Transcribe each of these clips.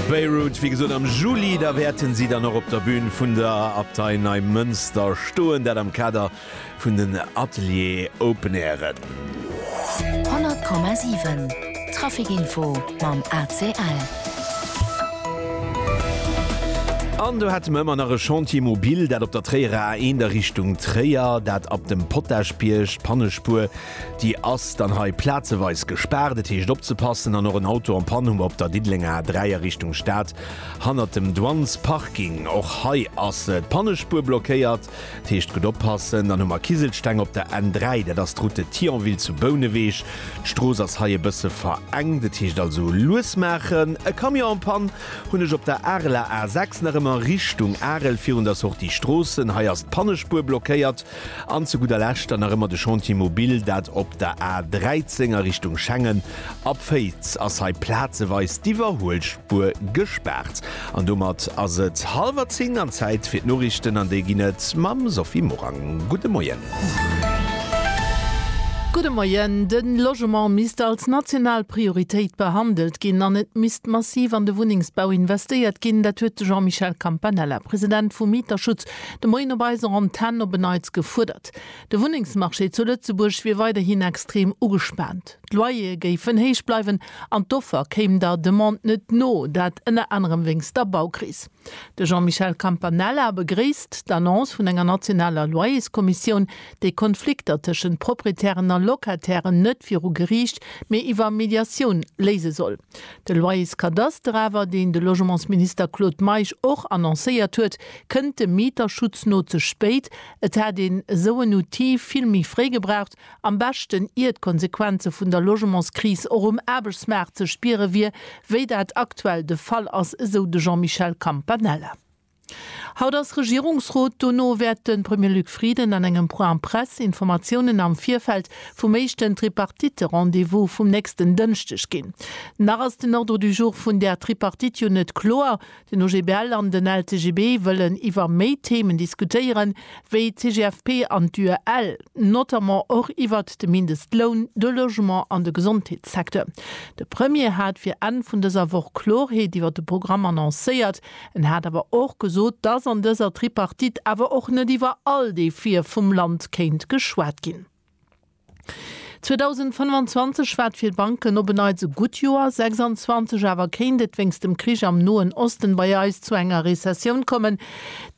Beirut, wéi gesot am Juli, da wäerten si dann och op der Bün vun der Abtei Neimënster stoen, dat am Kader vun den Atelier Open Airen. 100,7 Trafic Info mam ACL. An do hätte mer ëmmer nach e Chantier mobile, dat op der Tréierer A1 a Richtung Tréier, dat ab dem Potagebierg, d'Pannespuer, Déi ass dann hei plazeweis gespaart. Et heescht opzepassen an och en Auto en panne hu mer op der Diddelenger A3 a Richtung Stad hannert dem Douanes Parking. Och hei ass d'Pannespuer blockéiert. Et heescht gutt oppassen. Dann hu mer Kiselsteng op der N3, dat ass d'Route Thionville zu Bouneweg. D'Strooss ass hei e bësse verengt, et heescht also lues maachen. E Camion en panne hunn ech op der Areler A6 nach ëmmer Richtung Arel virun der Sortie Stroossen. Hei ass d'Pannespuer blockéiert. An zu gudder Lescht dann nach ëmmer de Chantier mobile, dat op der A 13 a Richtung Schengen. Ab Féiz ass hei plazeweis d'Iwwerhuelspuer gespaart. An domat ass et hallwer 10 an Zäit fir d'Noriichten an déi ginn et mam Sophie Morang. Gudde Moien. Gudde Moien. De Logement misst als national Prioritéit behandelt ginn an et misst massiv an de Wunnengsbau investéiert ginn. Dat huet de Jean-Michel Campanella, President vum Mieterschutz, De Moien op eiser Antenn op e Neits gefuerdert. De Wunnengsmarché zu Lëtzebuerg wier weiderhin extrem ugespaant. D'Loyere géifen héich bleiwen an d'Offer kéim der Demande net no, dat ënner anerem wéinst der Baukris. De Jean-Michel Campanella begréisst d'Annonce vun enger nationaler Loyerskommissioun, déi Konflikter tëschent Proprietären a Locatairen net viru Geriicht, mee iwwer Mediatioun léise soll. De Loyerskadaster awer, deen de Logementsminister Claude Meisch och annoncéiert huet, kënnt dem Mieterschutz no ze spéit. Et hätt een esou en Outil vill méi fréi gebraucht, am beschten ier d'Konsequenze vun der Logementskris och um Aarbechtsmaart ze spiere wier, wéi dat aktuell de Fall ass, esou de Jean-Michel Campanella. Haut ass Regierungsrot, dono wäert de Premier Luc Frieden an engem Point Presse Informatiounen am Virfeld vum éischten Tripartite-Rendez-vous vum nächsten Dënschdeg ginn. Nach ass den Ordre du jour vun där Tripartite jo net kloer. Den OGBL an den LCGB wëllen iwwer méi Themen diskutéieren, wéi d'CGFP an d'UEL, notamment och iwwert de Mindestloun, de Logement an de Gesondheetssecteur. De Premier hat fir Enn vun dëser Woch Klorheet iwwert de Programm annoncéiert. En hat awer och gesot, dass an dëser Tripartite awer och net iwwer all Defie vum Land kéint geschwat ginn. 2025 war fir d'Banken op en Neits e gutt Joer, 2026 awer kéint et wéinst dem Krich am Noen Osten bei eis zu enger Rezessioun kommen.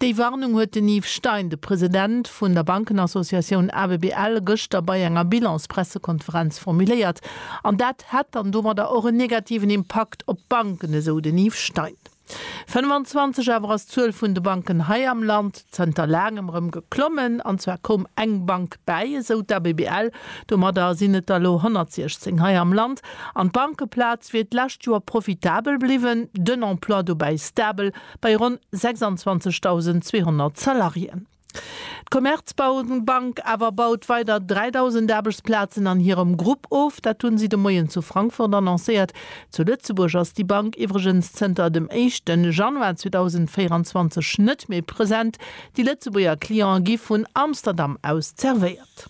Déi Warnung huet den Yves Stein, de President vun der Bankenassociatioun ABBL, gëschter bei enger Bilans-Pressekonferenz formuléiert. An dat hätt dann domadder och en negativen Impakt op d'Banken, esou den Yves Stein. 25 awer ass d'Zuel vun de Banken hei am Land zënter laangem erëm geklommen, an zwar koum eng Bank bäi, esou d'ABBL. Domadder sinn et der elo 116 hei am Land. An d'Bankeplaz wier d'lescht Joer profitabel bliwwen, den Emploi dobäi stabel bei ronn 26.200 Salariéen. D'Commerzbank awer baut weider 3.000 Aarbechtsplazen an hirem Grupp of. Dat hu si de Moien zu Frankfurt annoncéiert. Zu Lëtzebuerg ass déi Bank iwwregens zënter dem éischte Januar 2024 net méi present. Déi Lëtzebuerger Cliente gi vun Amsterdam aus zervéiert.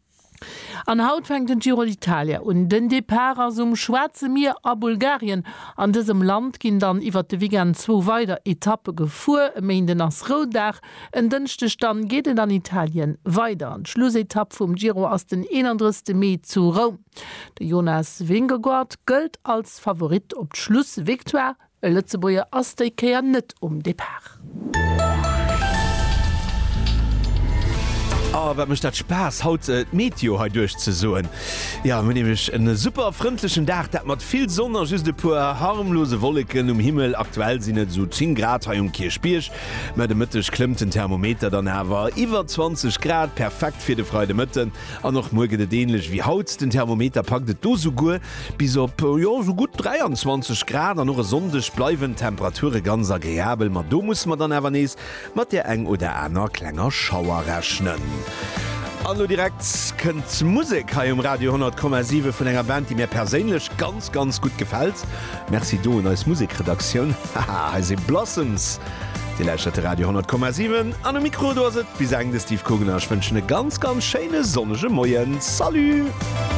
An haut fänkt den Giro d'Italia un. Den Depart ass um Schwaarze Mier a Bulgarien. An dësem Land ginn dann iwwert de Weekend zwou weider Etappe gefuer. E Méinden ass Rouddag, en Dënschdeg dann geet et an Italien weider. An d'Schlussetapp vum Giro ass den 31 Mee zu Roum. De Jonas Vingegaard gëllt als Favorit op d'Schlussvictoire. E Lëtzebuerger ass déi Kéier net um Depart. Oh wat mecht dat Spaass haut d'Meteo hei duerch ze soen. Jo mir hunn nämlech en super frëndlechen Dag, dat mat vill Sonn a just e puer harmlose Wolleken um Himmel. Aktuell sinn et esou 10 Grad hei um Kierchbierg, mä de Mëtteg klëmmt den Thermometer dann awer iwwer 20 Grad. Perfekt fir de Freidemëtten an och muer gëtt et änlech wéi haut, den Thermometer packt et do souguer Bis op, jo, esou gutt 23 Grad an och e Sonndeg bleiwen d'Temperature ganz agreabel, ma do musse mer dann awer nees mat där eng oder aner klenger Schauer rechnen. An elo direkt kënnt Musek hei um Radio 10,7 vun enger Band, déi mir perséinlech ganz, ganz gutt gefält. Merci do un eis Musekredaktioun. Haha, hei si Blossoms. Dir lauschtert de Radio 10,7 an um Mikro, do ass et bis eng de Steve Kugner. Ech wënschen e ganz, ganz schéine sonnege Moien. Salut!